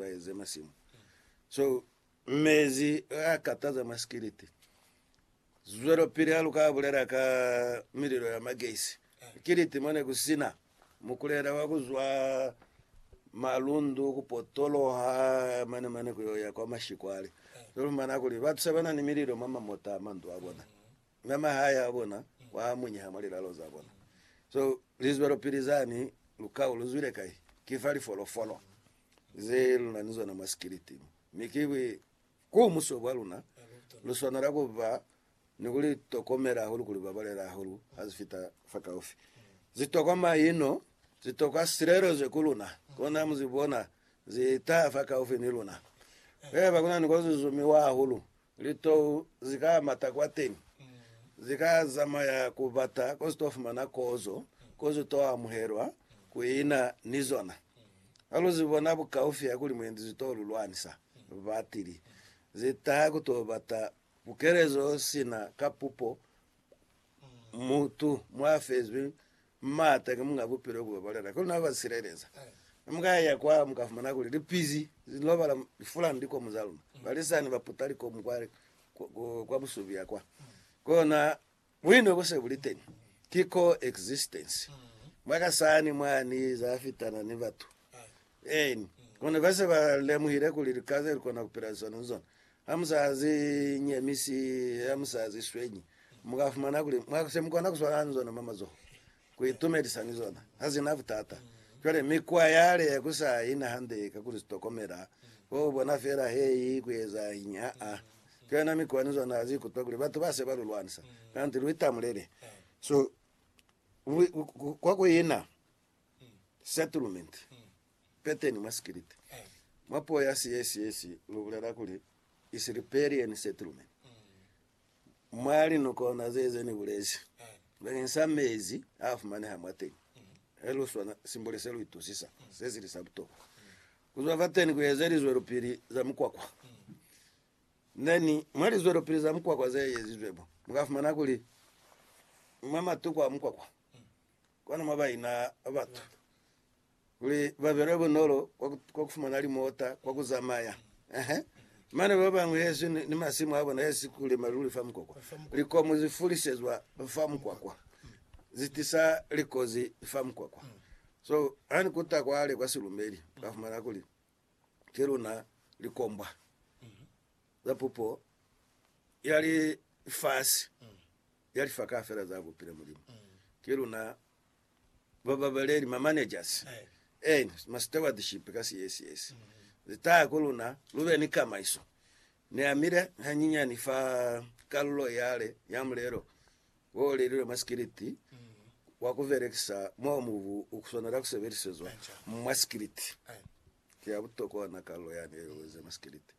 ba eze masimu so mezi a kataza masikiliti zwelopili ha lu ka bulela ka mililo ya magesi kiliti mone ku sina mukulela wa ku zwa malundu ku potoloha mane mane ku ya kwa mashikwale so mana kuli ba tuse bana ni mililo ma mamota mandu a bona na mahaya a bona wa munyeha mo lilalo za bona so lizwelopili zani lukao lu zwile kai kifa lifolofolo ze lu na ni zona mwa sikiliti, mi ki buikumuso bwa luna. Lu swanela ku ba ni ku li tokomela hahulu kuli ba balela hahulu ha ze fita fakaufi. Ze tokwa maino, ze tokwa silelezo ku luna, kona mu ze bona ze taha fakaufi ni luna. Haiba ku na ni ko ze zumiwa hahulu, Litou zi ka mata kwateñi, zi ka zamaya ku bata ko zi to fumana kozo, ko zi to amuhelwa, ku ina ni zona. Ha lu zi bona bukaufi ha kuli mwendi zi to lu lwanisa, batili zi taha ku to bata pukelezo sina ka pupo, mutu mwa fezwi M'ata ki munga bupilo ku babalela, kono na ba sileleza. Ne mu ka yaya kwa mu ka fumana kuli lipizi li lobala lifulani likomu za luna. Balisani ba puta likomu kwa, kwa busubia kwa. Kona buino bu se bu li teñi. Ki co-existence. Mwa ka sani mwa ni za fitana ni batu. Eeni. Kono ba se ba lemuhile kuli lika ze lu kona ku pila ni zona, ni zona Ha mu sa zi nyemisi ha mu sa zi swenyi, mu ka fumana kuli mwa se mu kona ku swalana ni zona mwa mazoho, ku itumedisa ni zona. Ha zi na butata. Cwale, mikwa yale ya ku sa i na hande ka ku li tokomela, ko ku bona fela he i ku ezañi. Ha-a. Cwale na mikwa ni zona ha zi ikutwa kuli batu ba se ba lu lwanisa, kanti lu itamulele. So, lu, kwa ku ina settlement. Peteni mwa sikiliti, mwa puo ya Siyesiyesi lu bulela kuli Isilipelieni Settlement. Mwa linukona ze ze ni bulezi bakeng sa mezi a fumaneha mwateñi, he lu swana simbole se lu itusisa se sili sa butokwa. Ku zwa fateni ku eze lizwelopili za mukwakwa. Neni, mwa lizwelopili za mukwakwa ze ezizwe mo, mu ka fumana kuli mwa matuku a mukwakwa, kwanu mwa baina batu. Kuli ba be lwe bunolo kwa ku fumana limota kwa ku zamaya. Ehe. Mane ba bañwi hesi ni masimu a bona hesi ku lima luli fa mukwakwa. Likomu zi fulisezwa fa mukwakwa. Zi tisa likozi fa mukwakwa. So, ha ni kuta kwale kwa silumeli, ka fumana kuli ki luna likombwa za pupo ya lifasi, ya lifa kaufela za bupile Mulimu. Ki luna ba babaleli, ma managers, and ma stewardship ka CSS, ze taha ku luna, lu be ni kamaiso. Ni amile hanyinyani fa kalulo yale ya mulelo wo o lelilwe mwa sikiliti wa ku belekisa mo mubu u swanela ku sebelisezwa mwa sikiliti. Ki ya butokwa ona kalulo yani ye lu eze mwa sikiliti.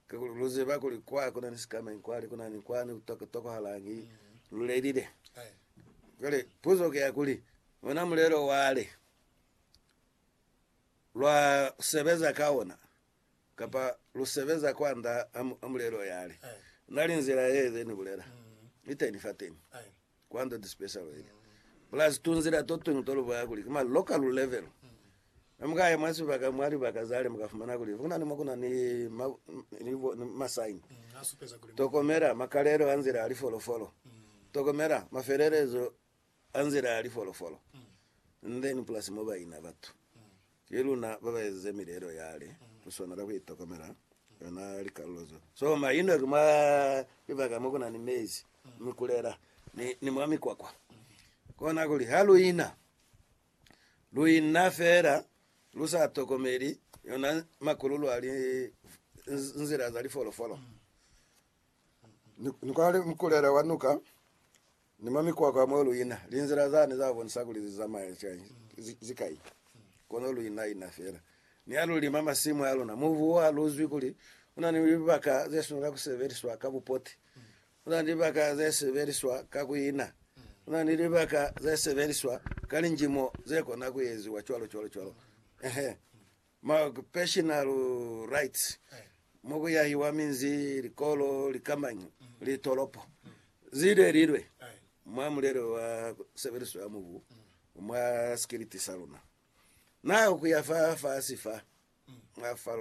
Kakuli lu ziba kuli kwa ku na ni sikamañi kwani, ku na ni kwani ku tokohalañi lu lelile. Cwale puzo ki ya kuli, ona mulelo wale lwa sebeza ka ona, kapa lu sebeza kwand'a mulelo yale? Na li nzila ye ze ni bulela iteni fateni. Kwando ti special ili, plus tunzila totuñwi tolubaya kuli ki ma local level. Ne mukaya mwa sibaka mwa libaka zale mukafumana kuli kuna ni mo kuna ni ma sign tokomela makalelo a nzila ya lifolofolo, tokomela mafelelezo a nzila ya lifolofolo, and then plus mo baina batu Ki luna babaezize mileelo yale, kuswanela kuitokomela yona likalulo zo soma ino ki mwa libaka mo kuna ni mezi, mikulela, ni, ni mwa mikwakwa. Kona kuli ha lu ina, lu ina fela lu sa tokomeli yona makululu ali nzila za lifolofolo. Ni, ni kwa mkulela wa nuka Ni mwa mikwakwa mo lu ina, linzila zani za bonisa kuli li zamaya cwañi? Ki kai? Kono lu ina-ina fela. Ni ha lu lima masimu a luna, mubu wa lu zwi kuli u na ni libaka ze swanela ku sebeliswa ka bupoti. U na ni libaka ze sebeliswa ka ku ina. U na ni libaka ze sebeliswa ka linjimo ze kona ku eziwa, cwalo cwalo cwalo. Ehe. ma occupational rights, mo ku yahiwa minzi, likolo, likamanyo, litolopo, zile lilwe, mwa mulelo wa sebeliso ya mubu mwa sikiliti sa luna. Na ku ya fa fasi fa, mwa falula.